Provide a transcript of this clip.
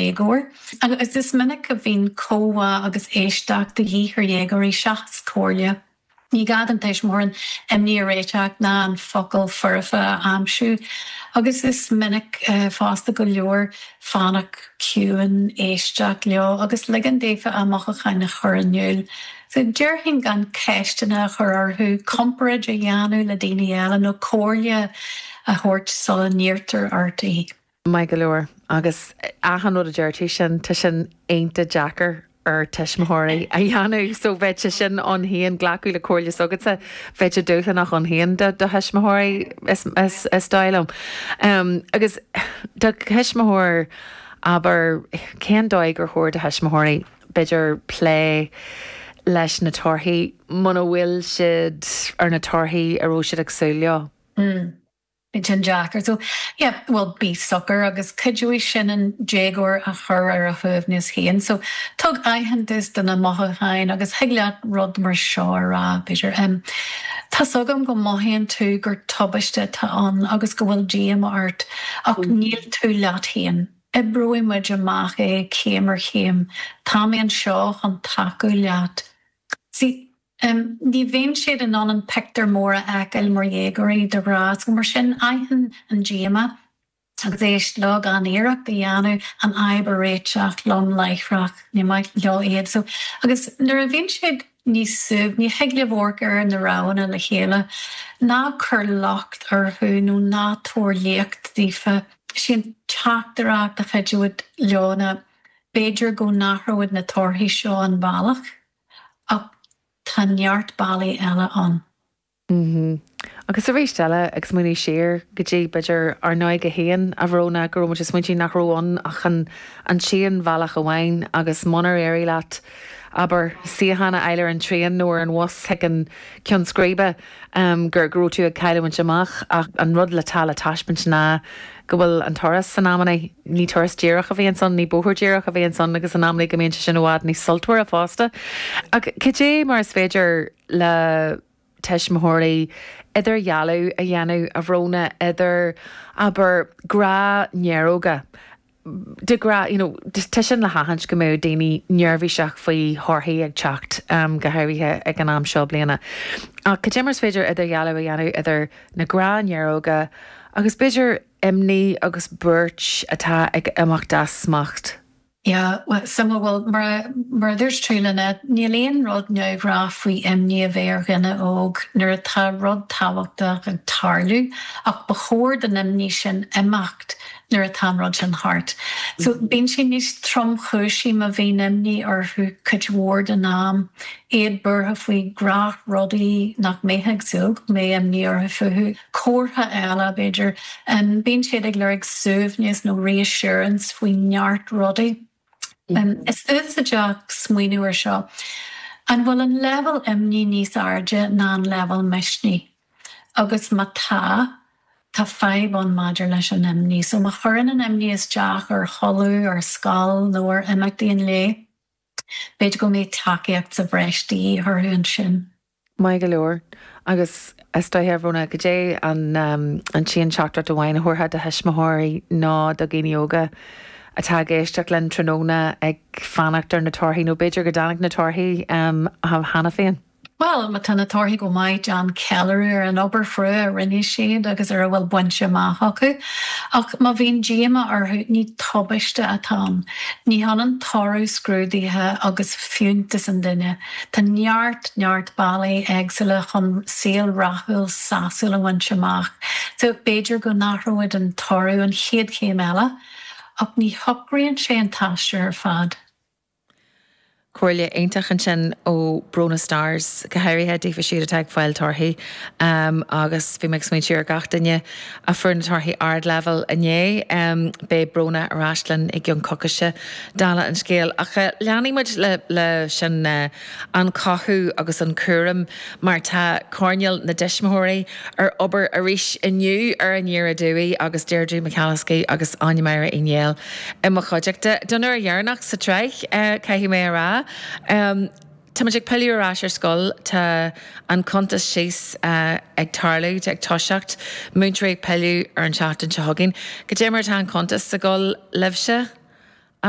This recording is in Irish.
éagóir. Agus is minic a bhíonn comhbhá agus éisteacht de dhíth ar dhéagóirí seachas comhairle. Ní gá don tuismitheoir an imní a réiteach ná an focal foirfe a aimsiú agus is minic fosta gur leor fanacht ciúin, éisteacht leo agus ligean daofa a mothúcháin a chur in iúl. Déarfainn gan ceisteanna a chur orthu, comparáid a dhéanamh le daoine eile nó comhairle a thabhairt sula n-iarrtar ort í. Maith go leor. Agus achan rud a deir tú sin, tá sin iontach deacair ar thuismitheoirí a dhéanamh. So bheadh sé sin ann féin, glacadh le comhairle s'agatsa, bheadh sé dúshlánach ann féin do thuismitheoirí is dóigh liom. Agus do thuismitheoir, abair, cén dóigh gur chóir do thuismitheoirí, b'fhéidir, plé leis na torthaí muna bhfuil siad ar na torthaí a raibh siad ag súil leo? Iontach deacair. So, yeah, bhuel, bí socair agus cuideoidh sin an déagóir a chur ar a shuaimhneas féin. So, tabhair aitheantas do na mothúcháin agus thig leat rud mar seo a rá, b'fhéidir, em, tá's agam go mothaíonn tú gur tubaiste atá ann agus go bhfuil díomá ort ach níl tú leat féin. Oibreoidh muid amach é céim ar chéim. Tá mé anseo chun tacú leat. See? Ní bhíonn siad in ann an pictiúr mór a fheiceáil mar dhéagóirí, de ghnách, is mar sin aithin an díomá agus éist leo gan iarracht a dhéanamh an fhadhb a réiteach lom láithreach. Ní maith leo advice. Agus nuair a bhíonn siad níos suaimhní, thig libh amharc ar na roghanna le chéile. Ná cuir locht orthu nó ná tabhair léacht daofa. Is í an teachtaireacht a chuideoidh leo ná, b'fhéidir go n-athróidh na torthaí seo an bealach Ach tá neart bealaí eile ann. Mh. Agus arís eile, ag smaointiú siar go dtí, b'fhéidir, ár n-óige féin, a Bhróna, go raibh muid ag smaointiú nach raibh ann ach an an t-aon bhealach amháin agus munar éirigh leat, abair, suíochán a fháil ar an traein nó ar an bhus chuig an gceann scríbe, gur go raibh tú ag cailliúint amach, ach an rud le teacht le taispeáint ná go bhfuil an turas sin in amanna, ní turas díreach a bhíonns ann, ní bóthar díreach a bhíonns ann, agus in amanna go mbíonn sé sin i bhfad níos sultmhara fosta. Ach cad é mar is féidir le tuismitheoirí idirdhealú a dhéanamh, a Bhróna idir, abair, gnáthnéaróga, de ghnách, you know, tá sin le haithint go mbeadh daoine neirbhíseach faoi thorthaí ag teacht, go háirithe ag an am seo bliana. Ach cad é mar is féidir idirdhealú a dhéanamh idir na gnáthnéaróga agus b'fhéidir imní agus buairt atá ag imeacht as smacht. Yeah, so em bhuel, mar a, mar a dúirt tú, Lynette, níl aon rud neamhghnáth faoi imní a bheith ar dhuine óg nuair atá rud tábhachtach ag tarlú ach ba chóir don imní sin imeacht nuair atá an rud sin thart. So, bíonn sé níos tromchúisí má bhíonn imní orthu cuid mhór den am, iad buartha faoi ghnáthrudaí nach mbeifeá ag súil go mbeadh imní orthu fúthu, comhartha eile, b'fhéidir, bíonn siad ag lorg suaimhneas nó reassurance faoi neart rudaí. Is úsáideach smaoineamh ar seo, an bhfuil an leibhéal imní níos airde ná an leibhéal misnigh? Agus má tá, tá fadhb ann maidir leis an imní. So má chuireann an imní isteach ar chodladh, ar scoil nó ar imeachtaí an lae, b'fhéidir go mbeadh tacaíocht sa bhreis de dhíth orthu ansin. Maith go leor. Agus is dóiche, a Bhronagh, goidé an t-aon teachtaireacht amháin a thabharfá do thuismitheoirí nó do dhaoine óga atá ag éisteacht linn tráthnóna ag fanacht ar na torthaí, nó b'fhéidir go dtáinig na torthaí cheana féin? Bhuel, má tá na torthaí go maith, déan ceiliúradh ar an obair chrua a rinne siad agus ar a bhfuil bainte amach acu. Ach má bhíonn díomá orthu, ní tubaiste atá ann. Ní hionann toradh scrúdaithe agus fiúntas an duine. Tá neart, neart bealaí éagsúla chun saol rathúil sásúil a bhaint amach. So, b'fhéidir go n-athróidh an toradh an chéad chéim eile, ach ní shocraíonn sé an t-aistear ar fad. Comhairle iontach ansin ó Bronagh Starrs, go háirithe daofa siúd atá ag fáil torthaí agus bhí mé ag smaointiú ar gach duine a fuair na torthaí ardleibhéil inné. Beidh Bronagh ar ais linn i gceann coicise, dála an scéil, ach leanfaidh muid le sin. an cothú agus an cúram mar tá coirnéal na dtuismitheoirí ar obair arís inniu ar an Déardaoin Dubh agus Deirdre McAliskey agus Áine-Máire Uí Néill i mo chuideachta don uair dheireanach sa tsraith, caithfidh mé a rá. Tá muid ag pilleadh ar ais ar scoil, tá an cuntas síos ag tarlú, ag toiseacht, múinteoirí ag pilleadh ar an seachtain seo chugainn. Goidé mar atá an cuntas ag gabháil libhse, a.